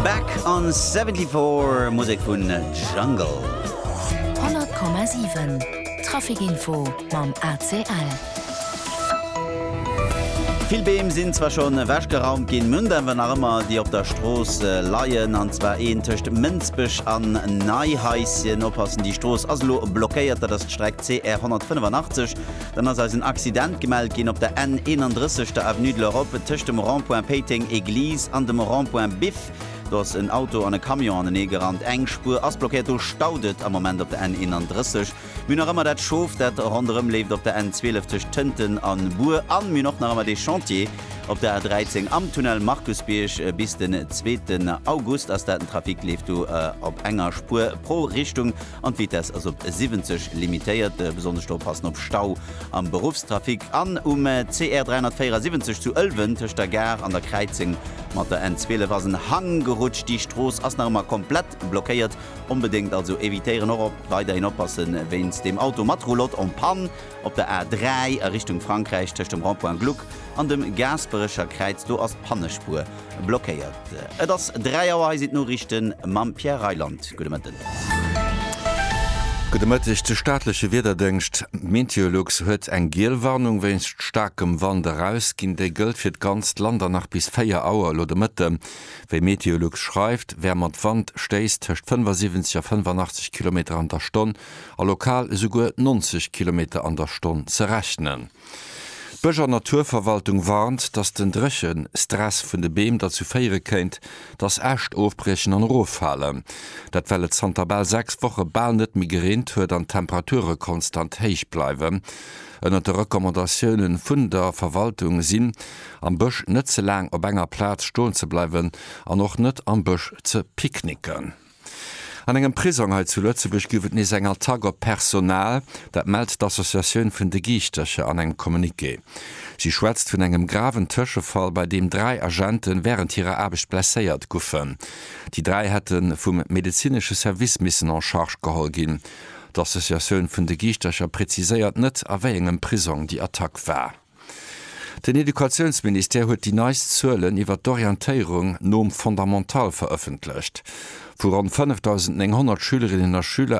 Back on 74, Musek vun Jungle. 100,7 Traficinfo mam ACL. Vill Beem sinn zwar schonn ewechgeraumt ginn, mün et awer nach ëmmer, déi op der Strooss leien. An zwar een tëscht Mënsbech an Neihaischen. Oppassen, déi Strooss ass elo blockéiert. Dat ass d'Streck CR 185. Dann ass eis en Accident gemellt ginn op der N 31, der Avenue de l'Europe, tëscht dem Rond-point Péiteng Église an dem Rond-point Biff. Do ass en Auto an e Camion anenee gerannt. Eng Spuer ass blockéiert. Do staut et am Moment op der N 31. Mir hunn nach ëmmer dat Schof, dat ronderëm leeft op der N 12 tëscht Tënten an Bur. An mir hunn och nach ëmmer dee Chantier op der A 13 am Tunnel Markusbierg. Bis den zweeten August ass dat. Den Trafic leeft do op enger Spuer pro Richtung. An d'Vitess ass op 70 limitéiert. Besonnesch oppassen op Stau am Beruffstrafic. An um CR 374 zu Ëlwen, tëscht der Gare an der Kräizeng mat der N 12, ass en Hang gerutscht. Déi Strooss ass nach ëmmer komplett blockéiert. Onbedéngt also evitéieren. Och weiderhin oppasse wéinst dem Auto mat Roulotte en panne op der A 3 a Richtung Frankräich, tëscht dem Rond-point Gluck an dem Gaasperecher Kräiz. Do ass d'Pannespuer. Blockéiert. Et ass 3 Auer, hei sinn d'Noriichten mam Pierre Reyland. Gudde Mëtten. Gudde Mëtteg. De staatleche Wiederdéngscht Meteolux huet eng giel Warnung wéinst staarkem Wand erausginn. Déi gëllt fir d'ganzt Land an nach bis 4 Auer elo de Mëtte. Wéi Meteolux schreift, wär mat Wand Stéiss tëscht 75 a 85 Kilometer an der Stonn a lokal esouguer 90 Kilometer an der Stonn ze rechnen. D'Bësch an Naturverwaltung warnt, datt den Dréchestress vun de Beem derzou féiere kéint, datt Äscht ofbriechen an eroffalen. Dat well et zanter bal 6 Woche bal net méi gereent huet an d'Temperature konstant héich bleiwen. Ënnert de Recommandatioune vun der Verwaltung sinn, am Bësch net ze laang op enger Plaz stoen ze bleiwen an och net am Bësch ze picknicken. An engem Prisong hei zu Lëtzebuerg gouf et nees eng Attack op d'Personal. Dat mellt d'Associatioun vun de Giischtercher an engem Communiqué. Si schwätzt vun engem graven Tëschefall, bei deem dräi Agente wärend hirer Aarbecht blesséiert guffen. Déi dräi hätte vum medezinesche Service missen en charge geholl ginn. D'Associatioun vun de Giischtercher preziséiert net, a wéi engem Prisong déi Attack war. Den Educatiounsministère huet déi neist Zuelen iwwer d'Orientéierung nom Fondamental verëffentlecht, wou ronn 5.900 Schülerinnen a Schüler